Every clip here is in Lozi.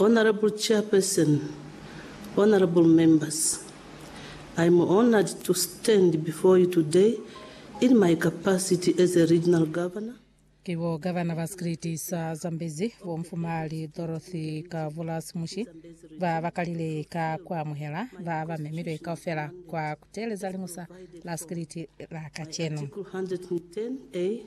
Honourable Chairperson, Honourable Members, I am honoured to stand before you today in my capacity as a Regional Governor, Ki bo Gavana ba Sikiliti sa Zambezi, Bo Mfumahali Dorothy Kavulasi Mushi, ba ba kalile ka ku amuhela ba ba memilwe kaufela kwa ku teeleza Liñusa la Sikiliti la kacenu. Article 110 A.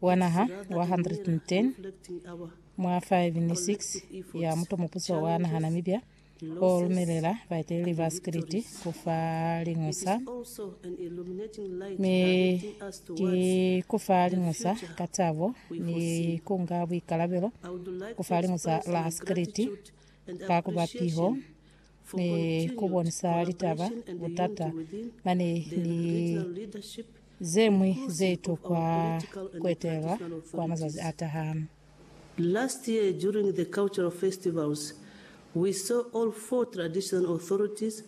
wa naha wa 110 mwa 5 ni 6 ya muto mupuso wa naha Namibia o lumelela baeteleli ba sikiliti ku fa liñusa, mi ki ku fa liñusa ka tabo ni ku nga buikalabelo ku fa liñusa la sikiliti ka ku ba piho. ni ku bonisa litaba, butata, mane ni ze ñwi ze itokwa ku etelwa kwa mazazi a taha. Last year during the cultural festivals, we saw all four traditional authorities